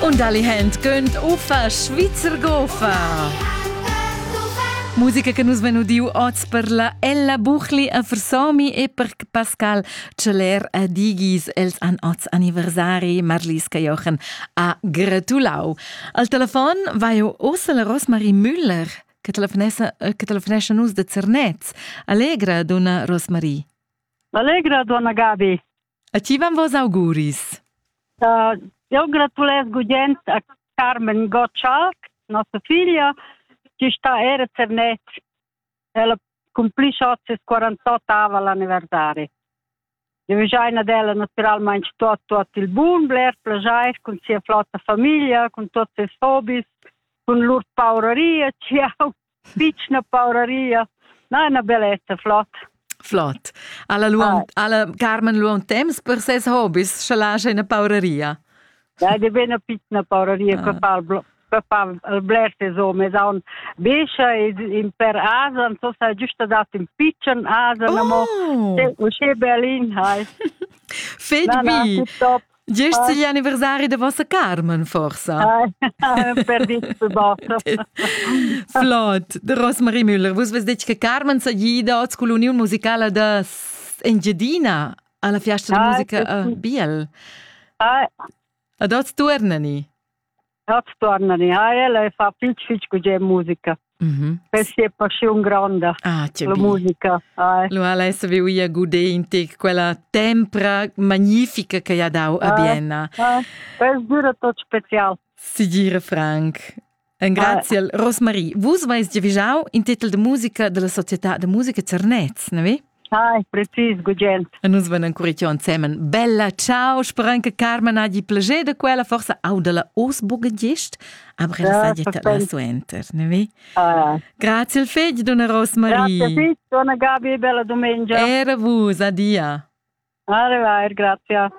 Und alle Hände gönnt Ufa Schweizer Gofa. Musica che nus venu diu oz per la Ella Buchli a Versomi e per Pascal Celler a Digis. Els an oz anniversari Marliska Jochen a gratulau. Al telefon va jo ossa la Rosmarie Müller che telefonessa, che telefonesce nus de Zernez. Allegra, donna Rosmarie. Allegra, donna Gabi. A ti van vos auguris. Uh, eu gratulez gugent a Carmen Gottschalk, nossa figlia, che sta era cernet. Ella cumplisce oggi 48 l'anniversario. Eu giaina della naturalmente tot tot il bun, bler plagiar con sia flotta famiglia, con tutti i hobbies, con lur paureria, ciao. Pitschna pauraria. Na, una bellezza, flott. Flott. Alla, luon, ah. alla Carmen luon temps per ses hobbies, sche lascia una pauraria. Ja, de bene pitna pauraria ah. per far per far il bler ses homes aun bescha in per asen so sai giusta dat in pitschen asen amo oh. usche berlin hai fed bi Gest igl anniversari de vossa Carmen, forsa? Perdiste bota. Flot. De Rosmarie Müller, vus ves detg che Carmen s'agi dad scull uniun musicala da Engiadina alla fiasta de ah, musica uh, Biel. Ah. A dot tuernani? Tots tornan in ael e fa fitg fitg gugent musica. Mm -hmm. Questa è passione grande, ah, la bien. musica. Ah. Lo ala savi uia gude in te quella tempra magnifica che ha dau a ah, Bienna. Ah, questa dura tot special. Si gira Frank. Grazie, ah. Rosmarie. Vus vais giavijau in tetel de musica della società de musica Cernez, ne vi? Hai, precis, gugent. E nus venan curitiò ensemen. Bella, ciao, speran che Carmen ha di plager da quella, forse au della os bugadist, aber ella sa dieta da suenter, ne vi? Ah. Grazie il fegli, donna Rosmarie. Grazie, sì, donna Gabi, bella domenica. Era vus, adia. Arrivare, grazie.